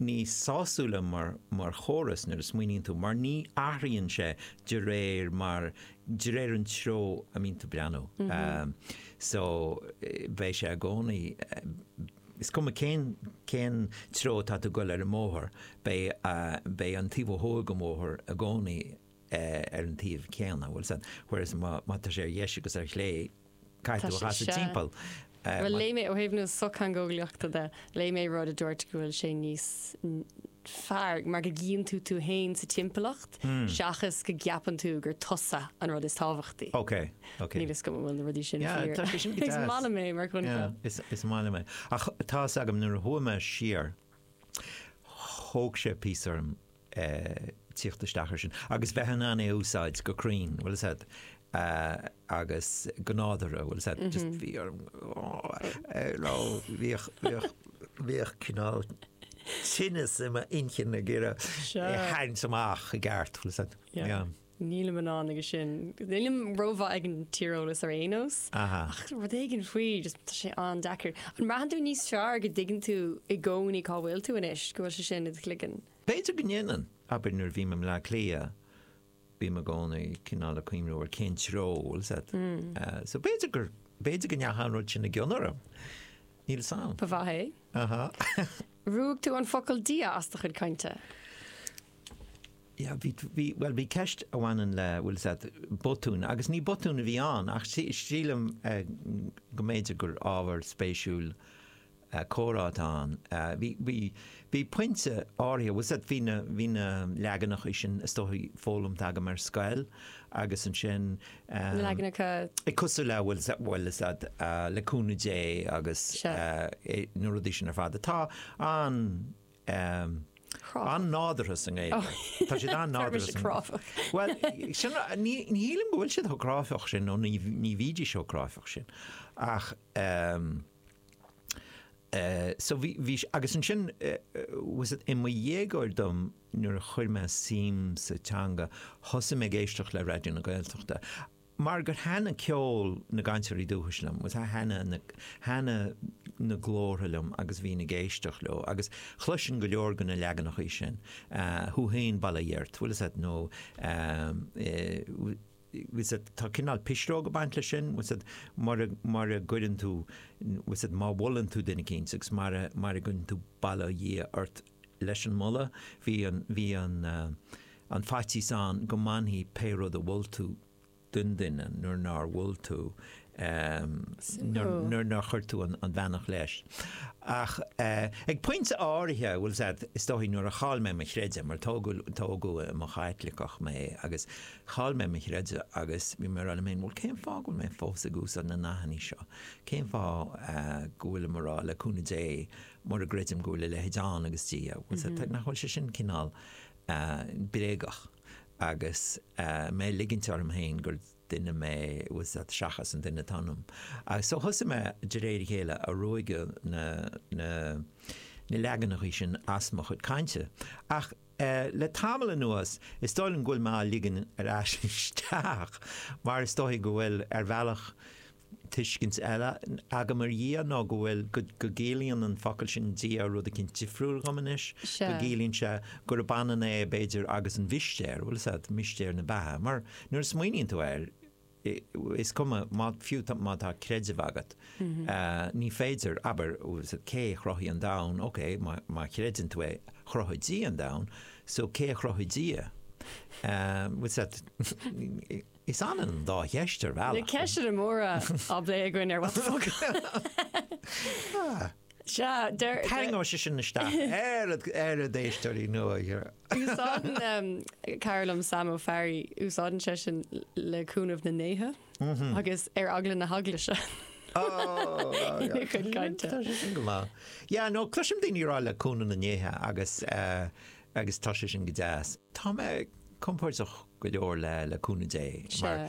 níos sásúla mar chóras nuair a smaoiníonn tú, mar ní athraíonn sé de réir mar, de réir an treo a mbíonn tú ag breathnú. So, beidh sé i gcónaí, is cuma cén, cén treo atá tú ag goil ar an mbóthar, beidh, beidh an taobh ó thuaidh den bhóthar i gcónaí, ar an taobh céanna, bhfuil 'fhios a'd, whereas má tá sé ar dheis agus ar chlé, caithfidh tú a chasadh timpeall. Bhuel léigh mé, ó thaobh na sochtheangeolaíochta de, léigh mé rud a dúirt go bhfuil sé níos fearr mar go gcíonn tú tú fhéin sa timpeallacht seachas go gceapann tú gur tusa an rud is tábhachtaí. Ok, ok. Níl 'fhios agam an bhfuil na rudaí sin fíor. Tá sé sin go deas. Is maith liom é mar choincheap. Yeah, is maith liom é. Ach tá 'fhios agam nuair a chuaigh mé siar, thóg sé píosa orm tíocht isteach ar sin agus bheith in ann é a úsáid go cruinn, bhfuil 'fhios a'd, agus go nádúrtha, bhfuil 'fhios a'd, just bhí orm, you know, bhíodh, bhíodh, bhíodh cineál tinneas i m'inchinn ag iarraidh é a tharraingt amach i gceart, bhfuil 'fhios a'd. Yeah. Nílim in ann aige sin. Nílim rómhaith ag an tíreolas ar aon nós. Ach rud éigin faoi, just tá sé an-deacair. An mbraitheann tú níos fearr go dtuigeann tú i gcónaí cá bhfuil tú anois, go bhfuil sé sin i do chloigeann? B'fhéidir go ndéanann. Abair nuair a bhím i mBleá Cliath, bím i gcónaí cineál ag cuimhniú ar cén treo a, bhfuil 'fhios a'd. So b'fhéidir gur, b'fhéidir go ndeachaigh an rud sin i gcion orm. Níl 'fhios a'm. B'fhéidir é. Ruaig tú an focal 'Dia' as do chuid cainte? Yeah, bhí, bhí, bhuel, bhí ceist a bhaineann le, bhfuil 'fhios a'd, botún, agus ní botún a bhí ann ach sílim go mb'fhéidir gur ábhar spéisiúil comhrá atá ann. Bhí, bhí, bhí pointe áirithe, bhfuil 'fhios a'd, bhí na, bhí na leaganacha sin is dóichí foghlamtha agam ar scoil agus ansin, na leaganacha, eh, cosúil le, bhfuil 'fhios a'd, bhfuil 'fhios a'd, le cúnamh Dé agus na rudaí sin ar fad atá an, an-nádúrtha sa nGaeilge. Tá siad an-nádúrtha sa. Tá siad cráifeach. Bhuel, sin, ní shílim go bhfuil siad chomh cráifeach sin, nó ní bhídís chomh cráifeach sin. Ach, so, bhí, bhí, agus ansin, bhfuil 'fhios a'd, i mo dhéagóir dom, nuair a chuir mé suim sa teanga, thosaigh mé ag éisteacht le Raidió na Gaeltachta, Mar gur thaitin ceol na gcainteoirí dúchais liom, bhfuil 'fhios a'd, thaitin na, thaitin na glórtha liom agus bhínn ag éisteacht leo agus chloisinn go leor de na leaganachaí sin, 'thú fhéin, bail ó Dhia ort, bhfuil 'fhios a'd, nó bhfuil 'fhios a'd, tá cineál pisreog ag baint leis sin, bhfuil 'fhios a'd, mura, mura gcuireann tú, bhfuil 'fhios a'd, má mholann tú duine eicínt agus mura, mura gcuireann tú bail ó Dhia ort, Leis an moladh, bhí an, bhí an, an faitíos ann go mbainfidh pé rud a mhol tú den duine nuair nár mhol tú, nuair nár chuir tú an bheannacht leis. Ach ag pointe áirithe, bhuel, is ea, is dóigh, nuair a chaill mé mo chreideamh, mar tógadh, tógadh i mo Chaitliceach mé, agus chaill mé mo chreideamh agus bhí mé ag rá liom féin, bhuel, cén fáth go bhfuil mé fós ag úsáid na nathannaí seo? Cén fáth go bhfuilim ag rá, le cúnamh Dé, mura gcreidim go bhfuil a leithéid ann agus Dia, nach bhfuil sé sin cineál bréagach agus mé ag ligint orm féin gur duine mé faoi seach seachas an duine atá ionam. So thosaigh mé, de réir a chéile, ag ruaigeadh na leaganachaí sin as mo chuid cainte. Ach le tamall anuas, is dóigh liom go bhfuil mé á ligean ar ais isteach, mar is dóichí go bhfuil, ar bhealach, tuiscint eile agam ar Dhia ná go bhfuil, go gciallaíonn an focal sin Dia rud eicínt difriúil dhom anois, go gciallaíonn sé gurb ionann é, b'fhéidir, agus an mhistéir, bhuel, is ea, mistéir na beatha, mar nuair a smaoiníonn tú air, is cuma, má, fiú má tá creideamh agat, ní féidir, abair, cé a chruthaigh an domhan, ok, má chreideann tú é, chruthaigh Dia an domhan, so, cé a chruthaigh Dia? Bhuel, sea, Is ionann an dá cheist ar bhealach. Na ceisteanna móra á bplé againn ar What the Foclóir. Sea, deir. Tarraingeoidh sé sin isteach na héisteoirí nua. Úsáideann cara liom, Sam Ó Fearraigh, úsáideann seisean le cúnamh na ndéithe agus ar eagla na heaglaise. Go maith. Yeah, no, cloisim daoine ag rá le cúnamh na ndéithe agus eh, Agus tá sé sin go deas. Tá mé compordach go leor le cúnamh Dé, mar